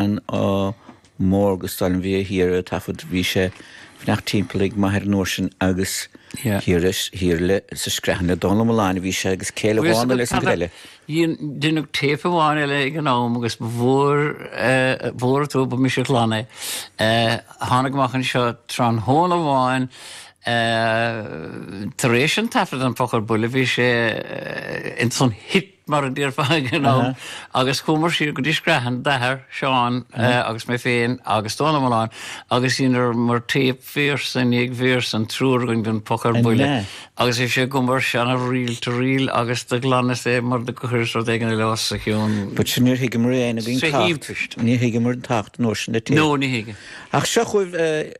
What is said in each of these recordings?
an ádh mór agus d'fháil an bhia thiar a taifead. Bhí sé ag imeacht timpeall ag m'athair an uair sin agus thiar leis, thiar le, sa Screathan le Dónall Ó Mulláin a bhí sé agus céile bhána leis an ghreille. Deineadh téip amháin eile ag an am agus ba mhór an trua, ba mise a ghlan é. Tháinig amach anseo tráthnóna amháin tar éis an taifead, An Poc ar Buile, bhí sé ins an thit, mar a déarfá ag an am, agus chuamar siar go dtí Screathan, d'athair, Seán, agus mé féin agus Dónal Ó Mulláin agus dheineamar téip véarsa i ndiaidh véarsa, an triúr againn den Poc ar Buile, agus bhí sé agam ar seana-ríl to ríl agus do ghlanas é mar do chuireas rud éigin eile os a chionn. But sure níor thuigeamar aon againn tábhacht, ní thuigeamar an tábhacht, nóisean na téip. No, ní thuigeamar. Ach seo chugaibh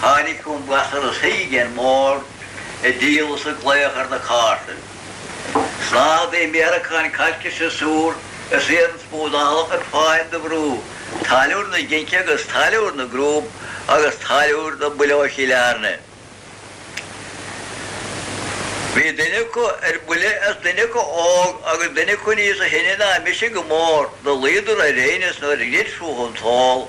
Tháinig chugam gasra a shuigh ar an mbord ag díol is ag glaoch ar na cártaí. Snáthaidí méaracáin cailc is siosúr is iarann smúdála ar fáil do bhrú, táilliúr na geince agus táilliúr na gcrúb agus táilliúr na buile ó Chill Airne. Bhí duine acu ar buile is duine acu óg agus duine acu níosa sine ná mise go mór, do luíodar ar aighneas nuair a dhruid fúthu an t-ól,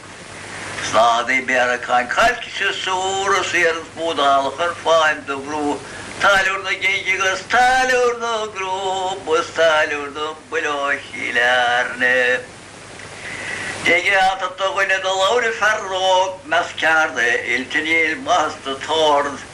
Snáthaidí méaracáin cailc is siosúr is iarann smúdála ar fáil do bhrú Táilliúr na Geince agus Táilliúr na gCrúb is Táilliúr na Buile ó Chill Airne. Dé geata do dhuine do labhair an fear óg, Measc ceardaí oilte níl maitheas id shórt.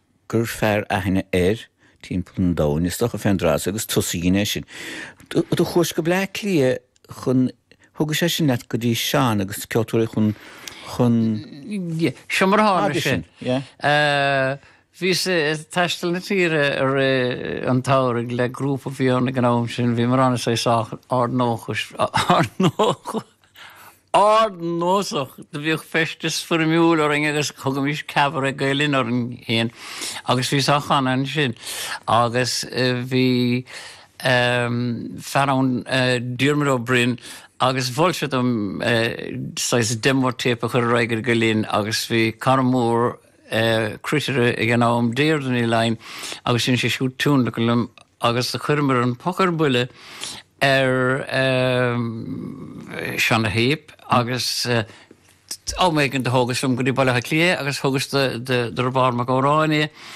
gur fearr aithne air timpeall an domhain, is dócha, fén dtráth so, agus tusa a dhein é sin. Do chuais go Bleá Cliath chun, thugais é sin leat go dtí Seán agus Ceoltóirí Chualann. Seo mar a tharla sé. Bhíos ag taisteal na tíre i rith an tsamhraidh le grúpa a bhí ann ag an am sin, bhíomar ann is é sách ardnósach, ardnósach! ardnósach, do bhíodh feisteas foirmiúil orainn agus thugaimis Cabaret Gael Linn orainn féin agus bhíos á chanadh ansin agus bhí ehm fear ann Diarmuid Ó Broin agus mhol sé dom saghas demo tape a chur ar aghaidh ar Gael Linn agus bhí cara mór cruitire ag an am, Deirdre Ní Fhlainn, agus sheinn sí siúd tionlacan liom agus do chuireamar An Poc ar Buile ar seana-théip agus am éigin do thógas liom go dtí Baile Átha Cliath é agus thugas do Riobard Mac Góráin é.